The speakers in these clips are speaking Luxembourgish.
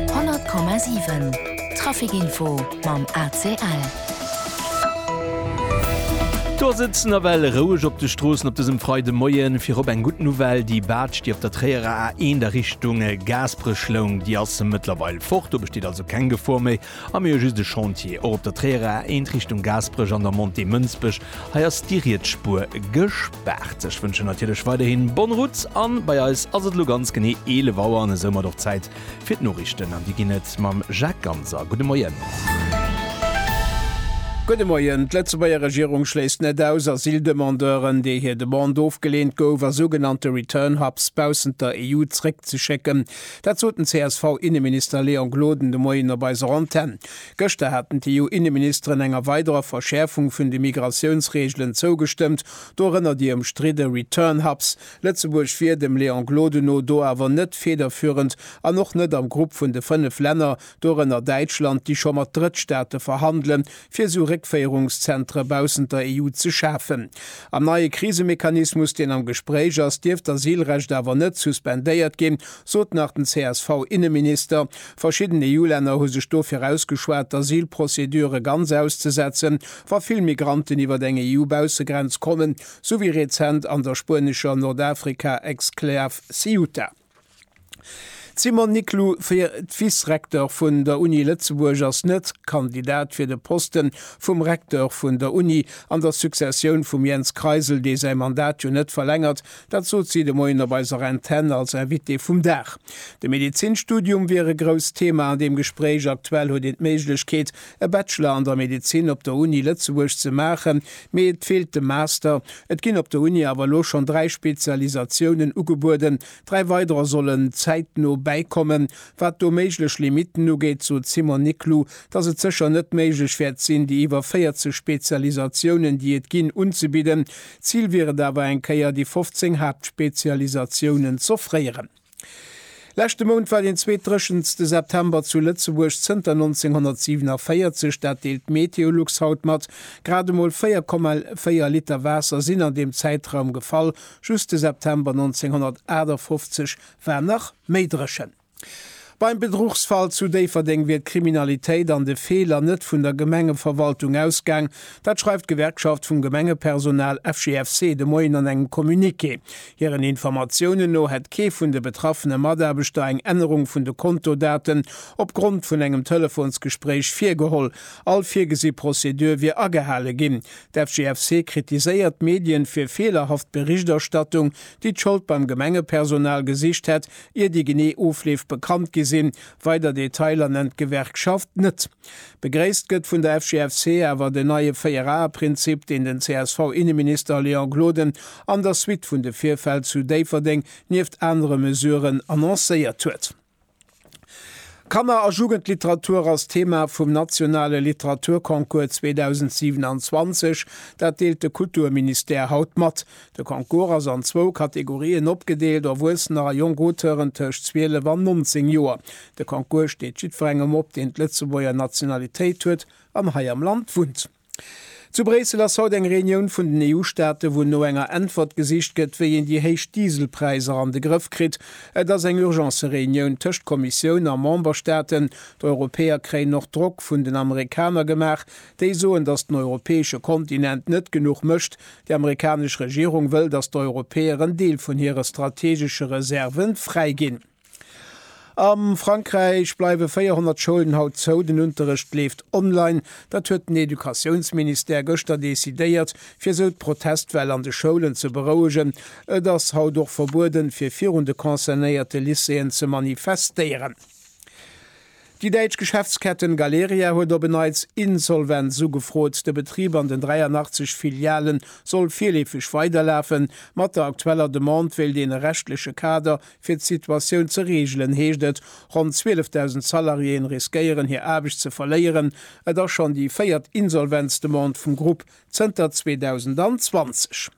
100,7 Trafic Info mam ACL. Do ass et nawell roueg op de Stroossen op dësem Freidemoien. Virop eng gutt Nouvelle, déi Baatsch, déi op der Tréierer A1 a Richtung Gaaspereschloung, déi ass mëttlerweil fort. Do besteet also keng Gefor méi. A mir hu just e Chantier och op der Tréierer A1 Richtung Gaasperech an der Montée Mënsbech. Hei ass déi riets Spuer gespaart. Ech wënschen natierlech weiderhi bonne route a bei eis ass et elo ganz genee 11 Auer an esoumat och Zäit fir d'Noriichten an déi ginn et mam Jacques Ganser. Gudde Moien. Gudde Moien. D'Lëtzebuerger Regierung schléisst net aus, Asyldemandeuren, deer hir Demande ofgeleent gouf, a sougenannte Return Hubs baussent der EU zréckzeschécken. Dat sot den CSV-Inneminister Léon Gloden de Moien op eiser Antenn. Gëschter haten d'EU-Inneministeren enger weiderer Verschäerfung vun de Migratiounsreegelen zougestëmmt, dorënner déi ëmstridde Return Hubs. Lëtzebuerg wier dem Léon Gloden no do awer net federführend an och net am Grupp vun de fënnef Länner, dorënner Däitschland, déi scho mat Drëttstaate verhandele fir esou Réckféierungszentre baussent der EU ze schafen. Am neie Krisemechanismus, deen am Gespréich ass, dierft d'Asylrecht awer net suspendéiert ginn, sot nach den CSV-Inneminister. Verschidden EU-Länner hu sech dofir ausgeschwat, d'Asylprocedure ganz auszesetzen, wa vill Migranten iwwer eng EU-Baussegrenz kommen, sou wéi rezent an der spuenescher Nordafrika-Exklav Ceuta. D'Simone Niclou, fir d'Vice-Recteur vun der Uni Lëtzebuerg, ass net Kandidat fir de Poste vum Recteur vun der Uni an der Successioun vum Jens Kreisel, dee säi Mandat jo net verlängert. Dat sot si de Moien op eiser Antenn als Invitée vum Dag. De Medezinstudium wier e grousst Thema an deem Gespréich. Aktuell huet een d'Méiglechkeet, e Bachelor an der Medezin op der Uni Lëtzebuerg ze maachen, mee et feelt de Master. Et ginn op der Uni awer elo schonn dräi Spezialisatiounen ugebueden, dräi weiderer sollen zäitno bäikommen. Wat do méiglech Limitten ugeet, sot d'Simone Niclou, datt et sécher net méiglech wäert sinn, déi iwwer 40 Spezialisatiounen, déi et ginn, unzebidden. Zil wier et awer, eng Kéier déi 15 Haaptspezialisatiounen z'offréieren. Leschte Mount war den zweet dréchenste September zu Lëtzebuerg zënter 1947, dat deelt d'Meteolux haut mat. Grad emol 4,4 Liter Waasser sinn an deem Zäitraum gefall. Just de September 1958 war nach méi dréchen. Beim Bedruchsfall zu Déifferdeng wier d'Kriminalitéit an de Feeler net vun der Gemengeverwaltung ausgaang. Dat schreift d'Gewerkschaft vum Gemengepersonal FGFC de Moien an engem Communiqué. Hiren Informatiounen no hätt kee vun de betraffene Mataarbechter eng Ännerung vun de Kontodaten opgrond vun engem Telefonsgespréich virgeholl. All virgesi Prozedur wier agehale ginn. D'FGFC kritiséiert d'Medien fir feelerhaft Berichterstattung, déi d'Schold beim Gemengepersonal gesicht hätt, ier déi genee Ofleef bekannt gi sinn. Weider Detailer nennt d'Gewerkschaft net. Begréisst gëtt vun der FGFC awer den neie Véier-Ae-Prinzip, deen den CSV-Inneminister Léon Gloden an der Suite vun de Virfäll zu Déifferdeng nieft anere Mesuren annoncéiert huet. Kanner a Jugendliteratur ass d'Thema vum nationale Literaturconcours 2027, dat deelt de Kulturministère haut mat. De Concours ass an zwou Kategorien opgedeelt, Erwuessener a jonk Auteuren tëscht 12 an 19 Joer. De Concours steet jiddwerengem op, deen d'Lëtzebuerger Nationalitéit huet an hei am Land wunnt. Zu Bréissel ass haut eng Reunioun vun den EU-Staaten, wou no enger Äntwert gesicht gëtt, wéi een déi héich Dieselpräisser an de Grëff kritt. Et ass eng Urgence-Reunioun tëscht Kommissioun a Memberstaaten. D'Europäer kréien och Drock vun den Amerikaner gemaach, déi soen, datt den europäesche Kontinent net genuch mécht, Déi amerikanesch Regierung wëll, datt d'Europäer en Deel vun hire strategesche Reserve fräiginn. A Frankräich bleiwe 400 Schoulen haut zou, den Unterrecht leeft online. Dat huet den Educatiounsministère gëschter decidéiert, fir esou d'Protestwell an de Schoulen ze berouegen. Et ass haut och verbueden, fir virun de concernéierte Lycéeën ze manifestéieren. Déi däitsch Geschäftsketten Galeria huet op en Neits Insolvenz ugefrot. De Betrib an den 83 Filialen soll virleefeg weiderlafen. Mat der aktueller Demande wéilt een e rechtleche Kader fir d'Situatioun ze reegelen, heescht et. Ronn 12.000 Salariéeën riskéieren hir Aarbecht ze verléieren. Et ass schonn déi véiert Insolvenzdemande vum Grupp zënter 2020.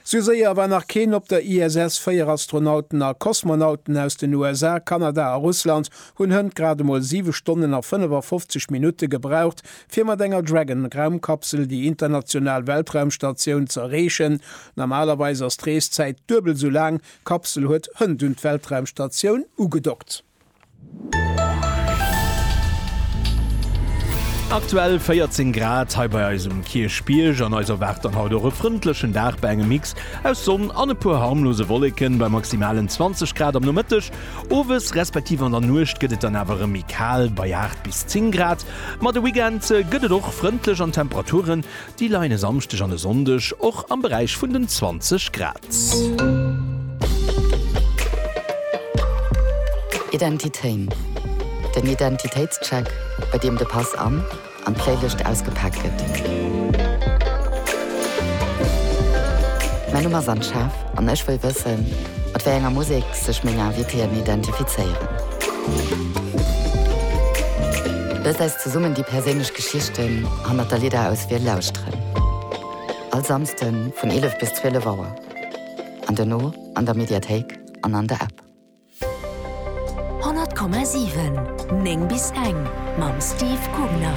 Sou séier war nach keen op der ISS. Véier Astronauten a Kosmonauten aus den USA, Kanada a Russland hunn hënt grad emol 7 Stonnen a 55 Minutte gebraucht, fir mat enger Dragon-Raumkapsel déi international Weltraumstatioun ze erreechen. Normalerweis ass d'Reeszäit duebel sou laang. D'Kapsel huet hënt un d'Weltraumstatioun ugedockt. Aktuell 14 Grad hei bei eis um Kierchbierg an eis erwaart dann haut och e frëndlechen Dag bei engem Mix aus Sonn an e puer harmlose Wolleken bei maximalen 20 Grad am Nomëtteg. Owes respektiv an der Nuecht gëtt et dann awer erëm méi kal bei 8 bis 10 Grad. Ma de Weekend gëtt et och frëndlech an d'Temperaturen Déi leien e Samschdeg an e Sonndeg och am Beräich vun den 20 Grad. Identitéin, den Identitéitscheck, bei deem de Pass an an d'Playlëscht ausgepaakt gëtt. Mäi Numm ass an Schaf an ech wëll wëssen, mat wéi enger Musek sech meng Invitéen identifizéieren. Lësst eis zesummen déi perséinlech. D'Geschichten hannert der Lidder aus Wiel lauschteren. All Samsden vun 11 bis 12 Auer. An dono an der Mediathéik an an der App. 100,7, 9 bis eng mam Steve Kugner.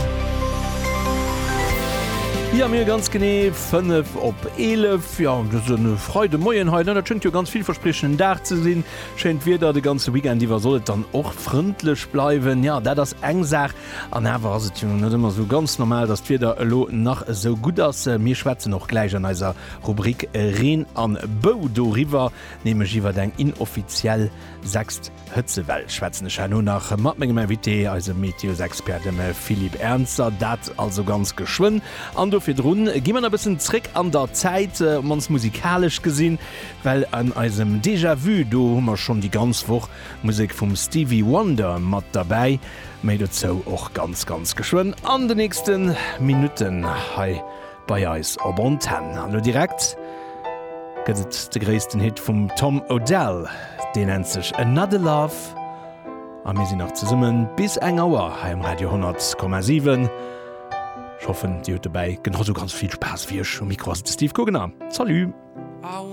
Jo mir ganz genee 5 op 11 jo an dësen Freide Moien hei, dat schéngt jo ganz villverspriechenden Dag ze sinn. Schéint Wieder de ganze Weekend iwwer, soll et dann och frëndlech bleiwen. Jo dat ass eng Saach. An awer ass et jo net ëmmer esou ganz normal, datt d'Wieder elo nach esou gutt ass. Mir schwätzen och gläich an eiser Rubrik Reen a Bou doriwwer, nämlech iwwer eng inoffiziell sechst Hëtzewell. Schwätzen ech herno nach mat mengem Invité, eisem Meteosexpert, dem Philippe Ernzer. Dat also ganz geschwënn. An do virdrun gi mer nach e bëssen zréck an der Zäit, op mannst musikalesch gesinn, well an eisem Déjà-vu, do hu mer schonn déi ganz Woch Musek vum Stevie Wonder mat derbäi. Méi dozou och ganz ganz geschwënn an de nächste Minutten hei bei eis op Antenn. An elo direkt gëtt et de gréissten Hit vum Tom Odell, dee nennt sech Another Love a mir sinn nach zesummen bis eng Auer hei um Radio 10,7. Ech hoffen dir hutt dobäi genau esou ganz vill Spaass wéi ech. Um Mikro ass de Steve Guggenheim. Salut!